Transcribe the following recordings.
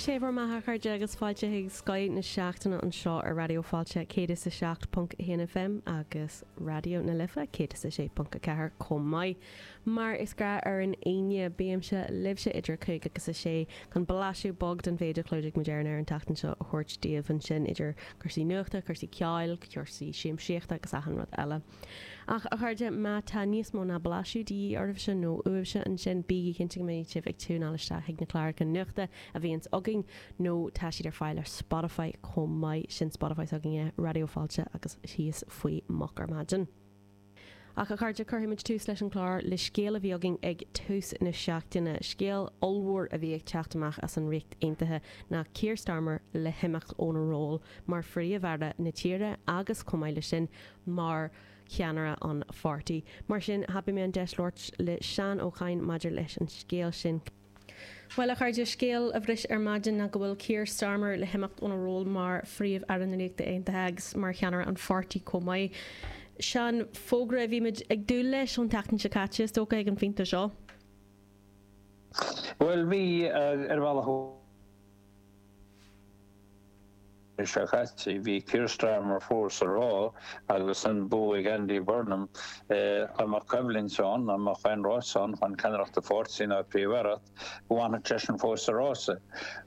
Sé bhur mbeatha a chairde agus fáilte chuig Scoth na seachtaine anseo ar Raidió Fáilte 107.1 FM agus Raidió na Life 106.4 chomh maith. Mar is gnách ar an Aoine, bímse libhse idir a cúig agus a sé chun blaiseadh beag den mhéid a chlúdaigh muid ar an aer an tseachtain seo a thabhairt daoibh ansin idir cúrsaí nuachta, cúrsaí ceoil, cúrsaí siamsaíochta agus achan rud eile. Ach, a chairde, má tá níos mó ná blaiseadh de dhíth oraibhse nó uaibhse ansin, bígí cinnte go mbeidh sibh ag tiúineáil isteach chuig na cláracha nuachta a bhíonns againn nó tá siad ar fáil ar Spotify chomh maith. Sin Spotify s'againne, Raidió Fáilte agus thíos faoi Moch ar Maidin. Ach, a chairde, cuirfidh muid tús leis an chlár le scéal a bhí againn ag tús na seachtaine, scéal ollmhór a bhí ag teacht amach as an Ríocht Aontaithe ná Keir Starmer le himeacht óna ról mar phríomh-aire na tíre agus, chomh maith leis sin, mar cheannaire an pháirtí. Mar sin, thapaigh mé an deis labhairt le Seán Ó Cadhain maidir leis an scéal sin. Bhuel, a chairde, scéal a bhris ar maidin ná go bhfuil Keir Starmer le himeacht óna ról mar Phríomh-Aire na Ríochta Aontaithe agus mar cheannaire an pháirtí chomh maith. Seán, fógra a bhí muid ag dúil leis ón tseachtain seo caite, is dócha, ag an phointe seo. Bhuel, bhí, ar bhealach. Mí seo caite, bhí Keir Starmer fós ag rá agus an bua ag Andy Burnham. Dá mbeadh coimhlint ann, dá mbeadh aon rása ann chun ceannaireacht an pháirtí nó an phríomh-aireacht, go bhfanfadh seisean fós sa rása.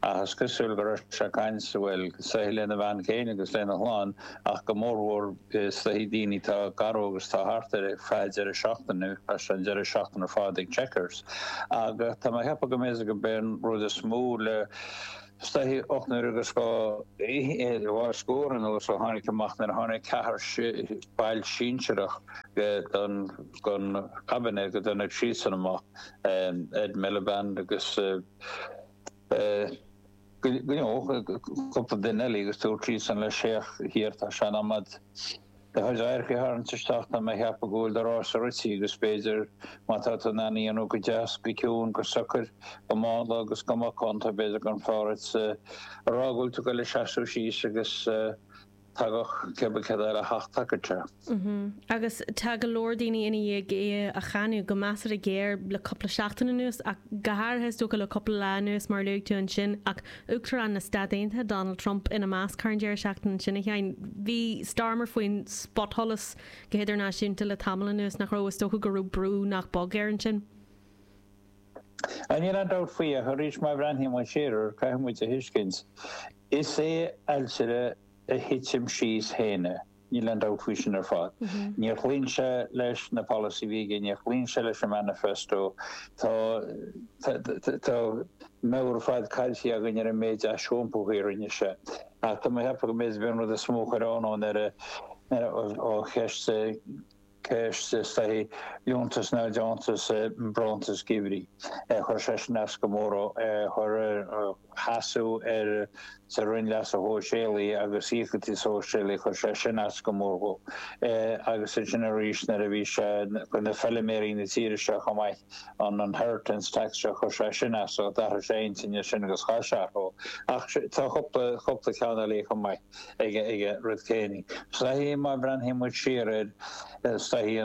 Ach is cosúil go raibh sé ag caint, bhuel, is dóichí lena bhean chéile agus lena chlann ach go mórmhór, Is dóichí daoine atá gar dhó agus atá thart air ar feadh deireadh seachtaine agus tá an deireadh seachtaine ar fad ag Chequers ach tá mé cheapadh go mb'é go mb'é an rud is mó le is dóichí ocht n-uaire agus dhá scór anuas ó tháinig amach nuair tháinig ceathair baill sinsearach go don gon cabinet go dtáinig siadsan amach Ed Miliband agus Nó cúpla duine eile agus dúirt siadsan leis féach Keir, tá sé in am a'd do chuid adharca a tharraingt isteach tá mé a cheapadh go bhfuil do rása rite agus b'fhéidir má tá tú in ann a dhéanamh go deas, go ciúin, go socair, go mánla agus go macánta b'fhéidir gur fearr dhuit a rá go bhfuil tú ag goil ag seasamh síos agus. Thagadh Geba Kedira thart taca te. Agus tá go leor daoine i ndiaidh é a cháineadh, go measartha géar, le cúpla seachtain anuas, ach go háirithe is dócha le cúpla lá anuas mar a luaigh tú ansin, ach Uachtarán na Stát Aontaithe, Donald Trump, ina measc thar an deireadh seachtaine ansin, a Sheáin. Bhí Starmer faoin spotsholas go hidirnáisiúnta le tamall anuas, nach raibh? Is dócha go raibh brú nach beag air ansin. Níl aon dabht faoi ach arís má bhreathnaíonn muid siar air caithfidh muid a thuiscint is é ailtire a thitim síos féin é. Níl aon dabht faoi sin ar fad. Níor chlaon sé leis na polasaithe a bhí aige, níor chlaon sé leis an manifesto. Tá tá meabhair ar fad caillte againn ar an méid aisiompaithe a rinne sé. Ach tá mé ag ceapadh go mb'fhéidir b'é an rud is mó a chuir anó air ná an cheist ceist is dóichí, liúntas nó deontas nó bronntanas geimhridh. Chuir sé sin as go mór dhó, chur ar sheasamh ar sa Roinn Leasa Shóisialaigh agus Íocaíochtaí Sóisialaigh, chuir sé sin as go mór dhó. Agus ansin arís nuair a bhí sé chuir na feiliméaraí na tíre seo chomh maith an inheritance tax seo, chuir sé sin as, d'athraigh sé a intinn ansin agus chaith sé orthu. Ach tá cúpla, cúpla ceann eile chomh maith. aige an rud céanna is dóichí má bhreathnaíonn muid siar air is dóichí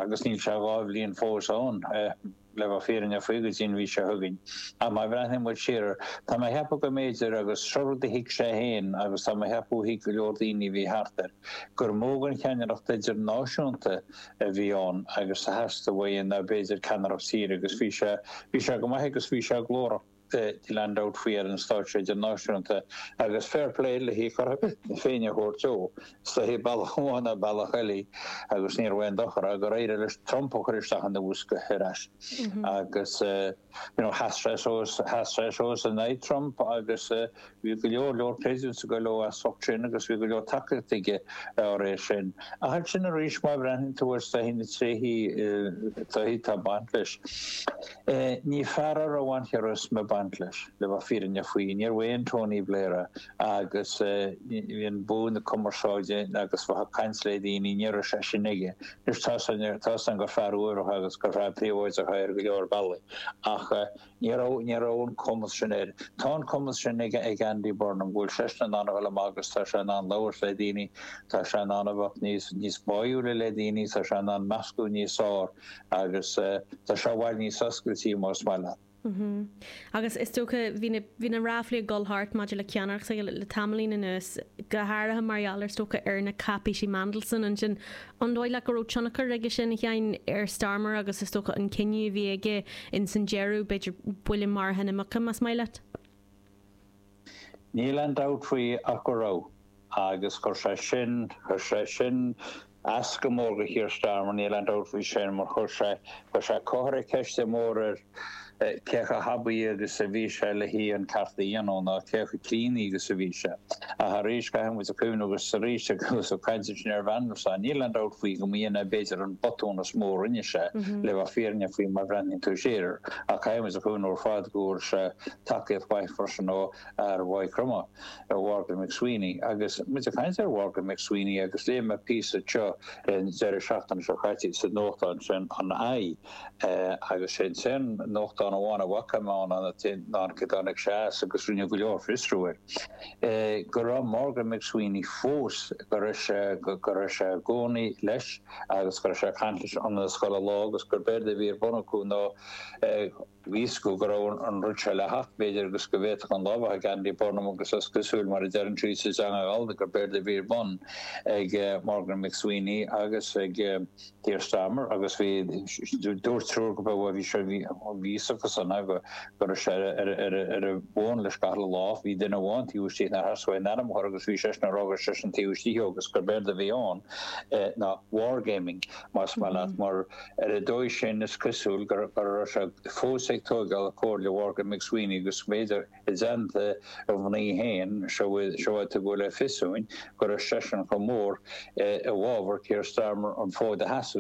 agus níl sé dhá bhliain fós ann le bheith fírinneach faoi go dtí an mhí seo chugainn ach má bhreathnaíonn muid siar tá mé a cheapadh go mb'fhéidir agus seo rud a thuig sé féin agus tá mé a cheapadh thuig go leor daoine a bhí thart air gur mó den cheannaireacht idirnáisiúnta a bhí ann agus a theastaigh uaidh ná b'fhéidir ceannaireacht tíre agus bhí sé bhí sé go maith agus bhí sé glórach. Níl aon dabht faoi ar an stáitse idirnáisiúnta agus fair play lena cheart féin a thabhairt dó. Is dóichí bealach amháin nó bealach eile agus níorbh aon dochar é gur éirigh leis Trump a chur isteach ina bhosca ar ais agus you know sheas sé suas, sheas sé suas in aghaidh Trump agus Bhí go leor leor praise ag goil dó as ucht sin agus bhí go leor tacaíocht aige dá réir sin. Ach ansin arís má bhreathnaíonn tú ar is dóichí na tréithe is dóichí atá ag baint leis. Ní fear a raibh an charisma ag baint leis, le bheith fírinneach faoi. Níorbh aon Tony Blair é. Agus sin bua na cumarsáide agus bheith ag caint le daoine, ní raibh sé sin aige. Anois tá a fhios againn, tá a fhios againn gur fear uaibhreach agus gur fear príobháideach é ar go leor bealaí ach, Ní raibh, ní raibh an cumas sin aige. Tá an cumas sin ag, ag Andy Burnham, go bhfuil seisean in ann a dhul amach agus tá sé in ann labhairt le daoine, tá sé in ann a bheith níos, níos báúla le daoine, tá sé in ann meascadh níos fearr agus tá sé i bhfad níos oscailte más maith leat. Mm-hmm. Agus is dócha, bhí na, bhí na ráflaí ag dul thart maidir le ceannaireacht s'aige le, le tamaillín anuas, go háirithe mar gheall ar, is dócha, ar na cáipísí Mandelson ansin. An dóigh leat go raibh tionchar aige sin, a Sheáin, ar Starmer agus is dócha an cinneadh a bhí aige ins an deireadh, b'fhéidir, buille maraithe na muice, más maith leat? Níl aon dabht faoi ach go raibh. Agus chuir sé sin, chuir sé sin as go mór do Keir Starmer, níl aon dabht faoi sin, mar chuir sé, chuir sé, comhartha ceiste mór air, cé chomh haibí agus a bhí sé leis an ceacht a dhéanamh nó cé chomh críonna agus a bhí sé. Ach arís, caithfidh muid a chuimhneamh agus arís agus ag caint ansin ar Mhandelson, níl aon dabht faoi go mb'in é b'fhéidir an botún is mó a rinne sé, le bheith fírinneach faoi mar a bhreathnaíonn tú siar air. Ach caithfidh muid a chuimhneamh ar fad go bhfuair sé tacaíocht mhaith freisin ó fhear Mhaigh Chromtha, Mhorgan McSweeney. Agus muid ag caint ar Mhorgan McSweeney agus léigh mé píosa seo an deireadh seachtaine seo caite sa nuachtán sin an fai, Agus sin an t-aon nuachtán amháin a bhfaca mé ann cé dtáinig sé as agus rinneadh go leor fiosrú air, go raibh Morgan McSweeney fós, go raibh sé, go raibh sé i gcónaí leis agus go raibh sé ag caint leis ionann is chuile lá agus gurb éard a bhí ar bun acu ná Bhí a fhios go go raibh an rud seo le theacht, b'fhéidir agus go bhféadfadh an lá a bheith ag Andy Burnham agus is cosúil mar a deireann siad sa teanga Ghallda gur b'éard a bhí ar bun ag Morgan McSweeney agus ag Keir Starmer agus bhí dúirt triúr go raibh bhí sé bhí a fhios acusan a go go raibh sé ar ar ar an bhfón leis gach uile lá bhí duine amháin taobh istigh nár theastaigh uaidh a n-ainm a chur agus bhí seisean ag rá gur seisean taobh istigh agus gur b'éard a bhí ann ná wargaming más maith leat mar Ar an dóigh sin, is cosúil go raibh sé fós ag tóigeáil comhairle Mhorgan McSweeney agus b'fhéidir i dteannta a mhnaoi féin, seo uaidh a tugadh le fios dúinn go raibh seisean chomh mór i bhfábhar Keir Starmer an fód a sheasamh.